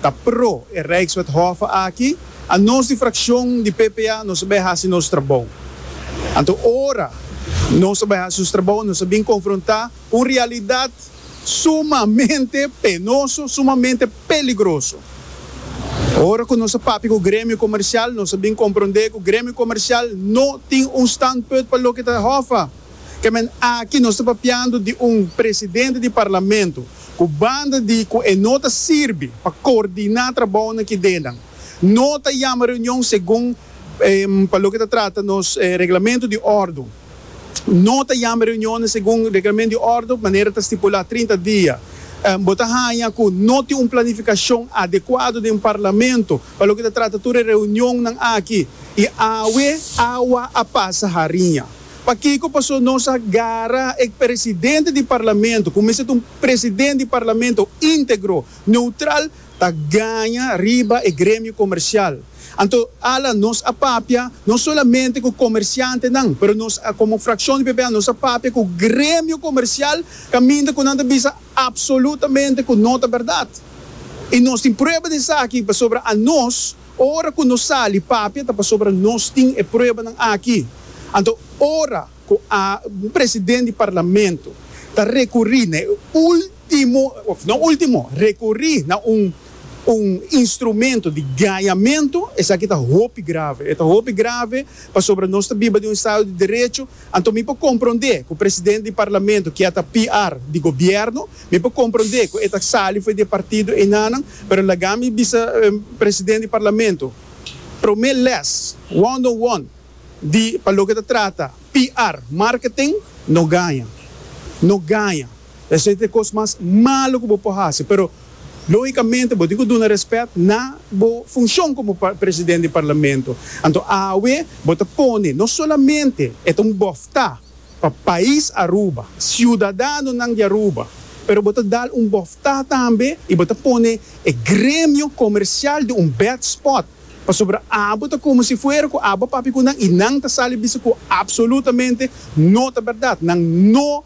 Ta pro e Rijkswethofe aki, a nos di fraccion di PPA nos a bay haci nos trabou. Anto ora nos a bay haci nos trabou nos a bin confronta cu un realidad sumamente penoso, sumamente peligroso. Ora cu nos a papia cu Gremio Comercial nos a bin compronde cu Gremio Comercial no tin un standpunt pa loke ta hofa. Ke men aki nos ta papiando di un presidente di parlamento ku banda di ku e no ta sirbi pa koordiná trabou na kidenan, no ta yama reunion segun pa loke ta trata nos reglamentu di ordu. No ta yama reunionnan segun reglamentu di ordu manera ta stipulá trinta dia. Bo ta haña ku no tin un planifikashon adekuado den parlamento pa loke ta trata tur e reunionnan aki i awe awa a pasa hariña. Pakiko paso nos a gara e presidente di parlamento ku mester ta un presidente di parlamento integro, neutral ta gaña riba e gremio komersial. Anto ala nos a papia no solamente ku komersiantenan pero nos komo frakshon di PPA nos a papia ku gremio komersial kaminda ku nan ta bisa apsolutamente ku no ta bèrdat i nos tin prueba di esaki pasobra anos Ora ku nos sali papia ta pasobra nos tin e pruebanan aki. Anto ora ku a un presidente di parlamento ta rekuri na e ultimo of no ultimo rekuri na un un instrumento di gañamento esaki ta hopi grave. E ta hopi grave pasobra nos ta biba den un estado di derecho Anto mi por comprende cu presidente di Parlamento kia ta PR di Gobierno, mi por comprende cu e ta sali fo'i di e partido enanan, pero laga mi bisa presidente di Parlamento prome les one on one di pa loke ta trata PR, marketing, no gaña, no gaña. Esei ta e kos mas malu ku bo por hasi, pero lógikamente bo tin ku duna rèspèt na bo funshon komo presidente di parlamento. Anto awe bo ta pone no solamente e ta un bòftá pa pais Aruba, siudadanonan di Aruba, pero bo ta dal un bòftá tambe i bo ta pone e gremio komersial den un bèd spòt pasobra abo ta komo si fuera ku abo a papia ku nan i nan ta sali bisa ku apsolutamente no ta bèrdat, nan no.